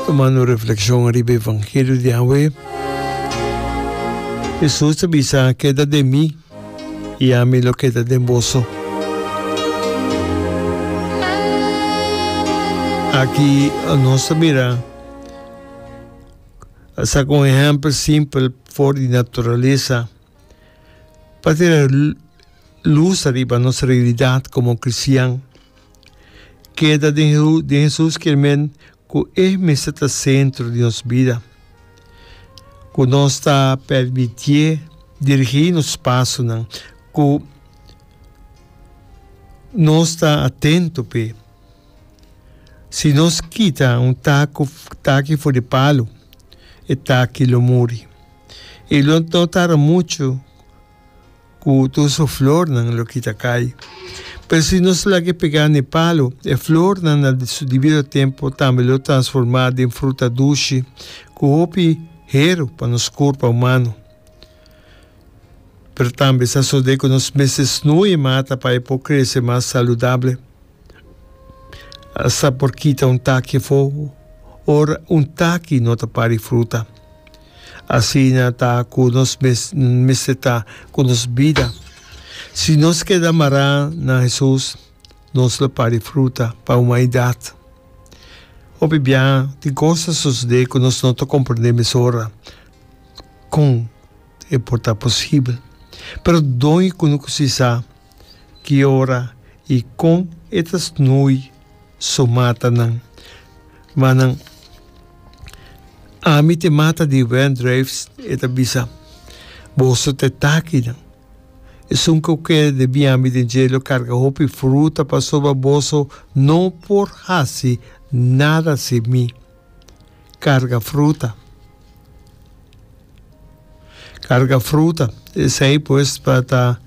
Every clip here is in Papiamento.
Tomando reflexion riba e vangelio di awe, Jesus a bisa, Keda den mi, i ami lo keda den boso. Aki nos ta mira a saca un ehempel simpel for di naturalesa pa tira luz ariba nos realidad como cristian. Keda den Hesus kier men ku e mester ta sentro di nos bida. Ku nos ta permitié dirigí nos pasonan, ku nos ta atento p'e. Si nos kita un taki for di palu, e taki lo muri. I lo no tarda muchu. ku tur su flornan lo kita kai. Pero si nos laga e pegá n'e palu, e flornan na su dibido tempu tambe lo transformá den fruta dushi ku hopi heru pa nos kurpa humano. Pero tambe sa sodé ku nos mester snui e mata pa e por krese mas saludable. Sa por kita un taki afó ora un taki no ta pari fruta. Asina ta ku nos mes mester ta ku nos bida. Si nos keda mará na Hesus, nos lo pari fruta pa humanidat. Hopi biaha tin kos ta sosodé ku nos no ta komprondé mesora kon e por ta posibel. Pero dónde ku no kusi sa ki ora i kon e ta snoei? su matanan. Ma nan ami te mata di Wendrijfs, e ta bisa. Boso ta e takinan. Esun ku keda den biami den jelo karga hopi fruta pasobra boso no por hasi nada sin mi. Karga fruta. Karga fruta. Esei pues pa ta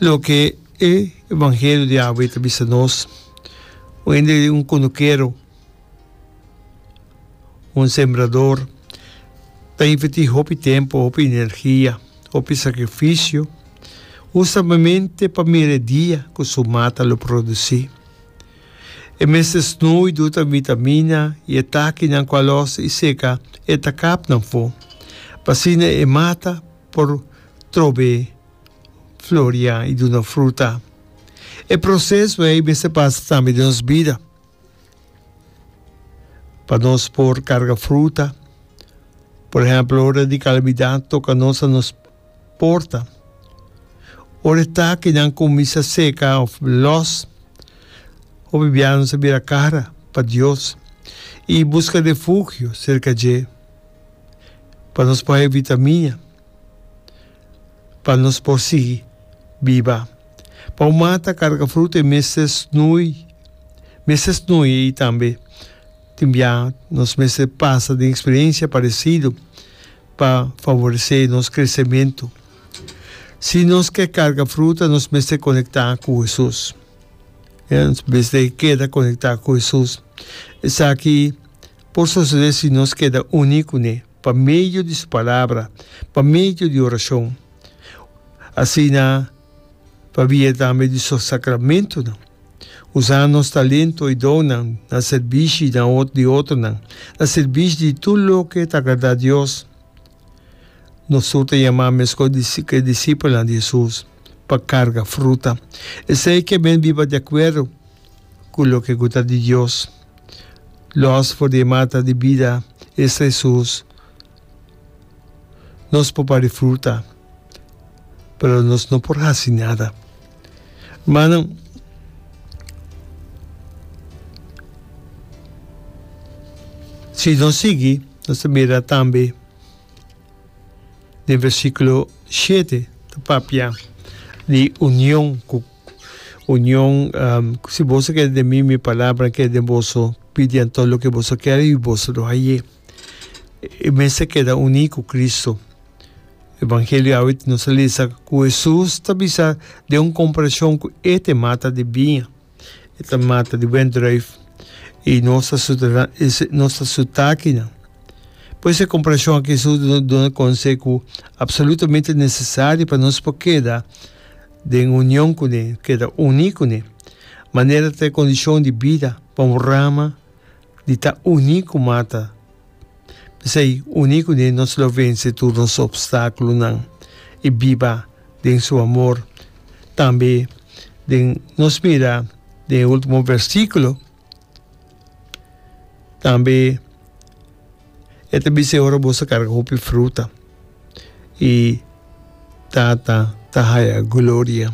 loke. E evangelio di awe i ta bisa nos un hende un konukero, un sembrador ta invertí hopi tempu, hopi energia, hopi sakrifisio hustamente pa mira e dia ku su mata lo produsí. E mester snui, duta vitamina i e takinan ku a lòs i seka e takapnan afó pa asina e mata por trobe floria i duna fruta. E proseso ei mester pasa tambe den nos bida. Pa nos por karga fruta, por ehèmpel ora di kalamidat toka nos na nos porta, ora e takinan kuminsha seka òf lòs, hopi bia nos a bira kara pa Dios i buska refugio serka dje pa nos por haya vitamiña. pa nos por sigui biba. Pa un mata carga fruta e mester snoei, mester snoei ei tambe. Tin bia nos mester pasa den experiencia parecido pa favorece nos crecemento. Si nos ke carga fruta nos mester conecta cu Hesus, nos mester keda conecta cu Hesus. Esaki por sucede si nos keda uni cu ne. Pa medio di su palabra. Pa medio di oracion. Asina pa via tambe di su sacramentonan. Usa nos talento y donnan na servishi di otronan, na servishi di tur loke ta agrada Dios. Nos tur ta yama mesco cu e disipelnan di Jesus pa carga fruta. Esey ke men biba di acuerdo cu loke cu ta di Dios. Los for di e mata di bida, esta Hesus, nos por bari fruta, pero nos no por haci nada. Manan, si nos sigui, nos ta mira tambe den versiculo shete, ta papia di union cu Union si boso kere den mi mi palabra kere den boso pidi anto loke boso kere y boso lo haye y mester keda uni cu Cristo evangelio awe nos ta lesa cu Jesus ta bisa den un comparacion cu e ta mata di biña e ta mata di wendruif y nos ta su nos ta su takinan pues e comparacion aki Jesus duna conse cu absolutamente necesario pa nos por keda Den union cu ne, keda uní cu ne. Manera ta e condicion di bida pa un rama di ta uní cu mata. P'esei, uní cu ne nos lo vence tur nos obstáculonan i biba den su amor. Tambe den nos mira den e ultimo versículo. Tambe e ta bisa e ora bo sa karga hopi fruta i Tata ta haya gloria.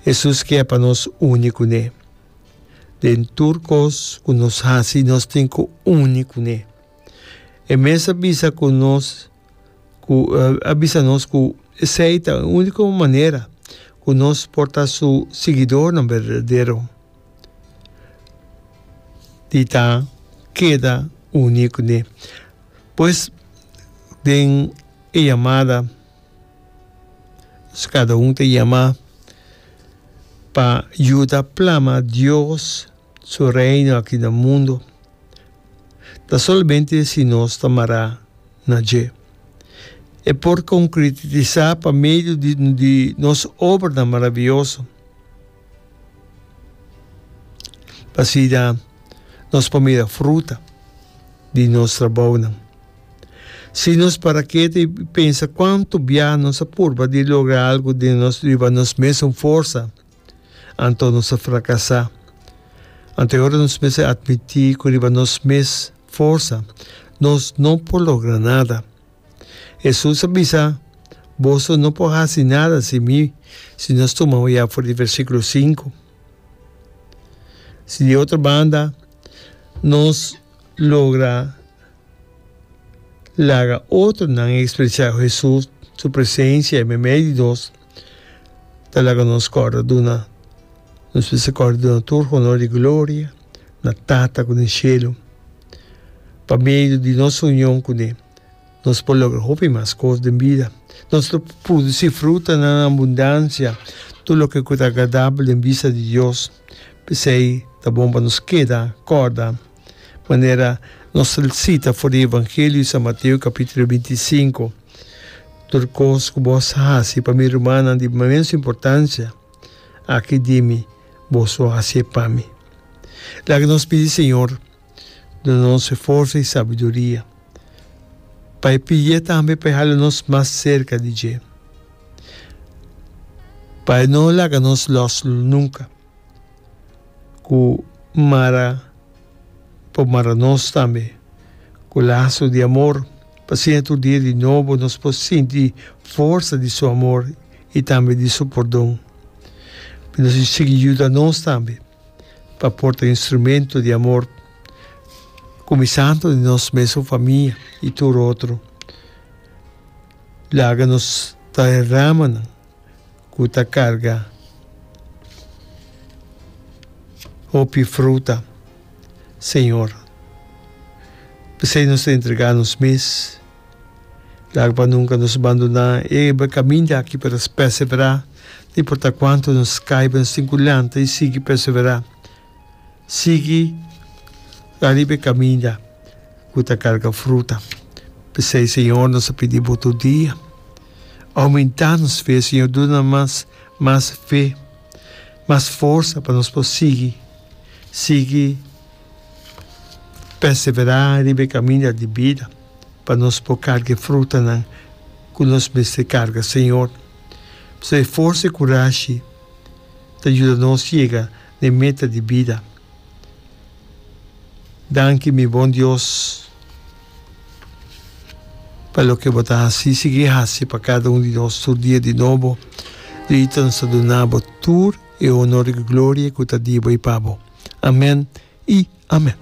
Hesus kia pa nos uni ku ne. Den tur kos ku nos hasi nos tin ku uni ku ne. E mes a bisa ku nos ku a bisa nos ku esei ta e uniko manera ku nos por ta su siguidornan berdadero. di ta keda uni ku ne. Pues den e yamada kada un ta yama pa yuda plama Dios su reino aki na mundo, ta solamente si nos ta mara na dje. E por konkretisá pa medio di nos obranan maravioso. Asina nos por mira fruta di nos trabounan. Si nos para kiet i pensa kuantu bia nos a purba di logra algu riba nos mesun forsa, anto nos a frakasá. Anto e ora nos mester atmití ku riba nos mes forsa nos no por logra nada. Hesus a bisa, Boso no por hasi nada sin mi, si nos tuma oyá for di versíkulo sinku. Si di otro banda nos logra laga otronan ekspresiá Hesus su presensia en medio di nos, Ta laga nos corda duna, nos bisa corda duna tur honor y gloria na Tata cu den Cielo. Pa medio di nos union cu Ne nos por logra hopi mas cos den bida. Nos lo produci frutanan na abundancia, tur loke cu ta agradabel den bista di Dios. P'esey ta bon pa nos keda corda manera nos cita for di Evangelio di San Mateo capitulo binti y sinku. Tur kos ku bos hasi pa mi rumannan di mens importansia, aki di mi bos lo hasi e pa mi. Laki nos pidi Señor duna nos e forsa i sabiduria pa e pid'é tambe pa e hala nos mas serka di dje, pa e no laga nos lòs nunka ku mara. por mara nos tambe ku laso di amor. Pasobra tur dia di nobo nos por sinti forsa di su amor i tambe di su pordon. Nos a sigui yuda nos tambe pa por ta instrumento di amor, kuminsando di nos mesun famia i tur otro. Laga nos ta e ramanan. ku ta karga hopi fruta, señor. P'esei nos ta entregá nos mes. Laga pa nunka nos bandoná e kaminda aki, pero nos pèseverá. No importá kuantu nos kaiba, nos tin ku lanta i sigui pèseverá. sigui ariba e kaminda ku ta karga fruta. P'esei, Señor, nos a pidi bo tur dia, Oumentá nos fe, Señor, duna mas, mas fe, mas forsa pa nos por sigui, sigui perseverá riba e kaminda di bida, pa nos por karga e frutanan ku nos mester karga, Señor. P'esei, forsa i kurashi ta yuda nos yega. den meta di bida. Danki mi bon Dios pa loke bo ta hasi. Sigui hasi pa kada un di nos tur dia di nobo. Luita nos ta duna bo tur e honor i gloria ku ta di bo i pa bo. Amen i amen.